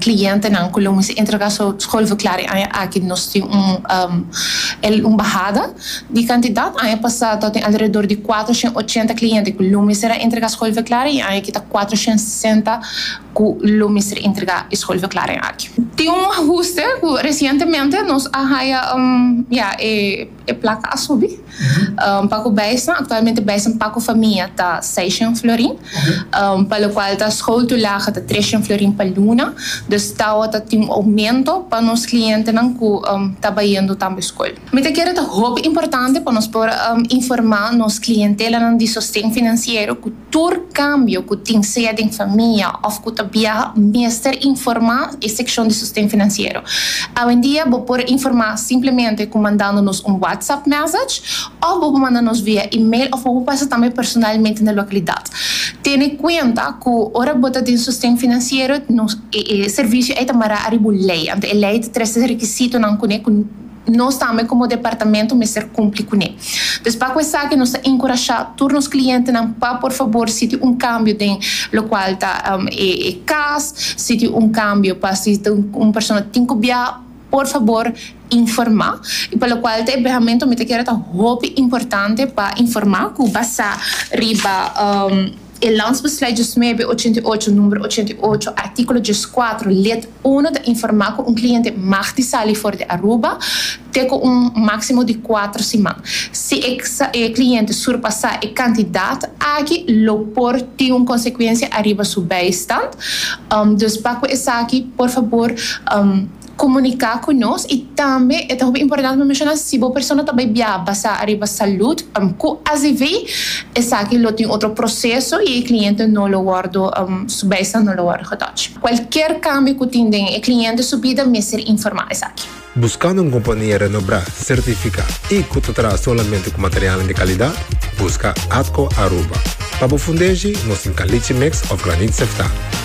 clientenan cu lo mester entrega su schoolverklaring e aña aki nos tin un bahada di cantidad. Aña pasado a tin alrededor di cuatro shen ochenta cliente cu lo mester a entrega schoolverklaring y aña aki ta cuatro shen sesenta cu lo mester entrega e schoolverklaring aki. Tin un ahuste cu recientemente nos a haya ya e. E plaka a subi pa ku Bijsnan. Aktualmente Bijsnan pa ku famia ta seishen florin, pa lokual ta school to laag ta treshen florin pa luna. Dus tawa ta tin un oumento pa nos klientenan ku ta bayendo tambe school. Mi ta kere ta hopi importante pa nos por informa nos klientelanan di sosten finansiero ku. Tur kambio ku tin, sea den famia òf ku ta biaha, mester informá e sekshon di Sosten Finansiero. Awendia bo por informá simplemente ku mandando nos un WhatsApp mèsech òf bo por manda nos via email òf bo por pasa tambe personalmente na lokalidat. Tene kuenta ku ora bo ta den Sosten Finansiero nos e servisio ei ta mará ariba un lei, anto e lei ta trese rekisitonan kuné ku. Nos tambe komo departamento mester kumpli kuné. Pues pa ku esaki nos ta inkurashá tur nos klientenan pa por fabor si tin un kambio den lokual ta e kas, si tin un kambio pa si un persona tin ku biaha por fabor informá. I pa lokual ta e biahamento mi ta kere ta hopi importante pa informá ku basá riba. E Landsbeslui diesnuebe ochenta i ocho, numero ochenta i ocho, artíkulo dieskuater, lid uno ta informá ku un kliente mag di sali for di Aruba te ku un máksimo di kuater siman. Si e e kliente surpasá e kantidat aki lo por tin un konsekuensia ariba su beistand. Dus pa ku esaki por fabor. komuniká ku nos i tambe e ta hopi importante pa menshona si bo persona ta bai biaha basá ariba salud ku azv esaki lo tin otro proseso i e kliente no lo wòrdu su bijstand no lo wòrdu getòch. Kualker kambio ku tin den e kliente su bida mester informá esaki. Buskando un kompania renobrá, sertifiká i ku ta traha solamente ku materialnan di kalidat? Buska Atco Aruba. Pa bo fundeshi, nos tin kalichi mix òf granit sèftá.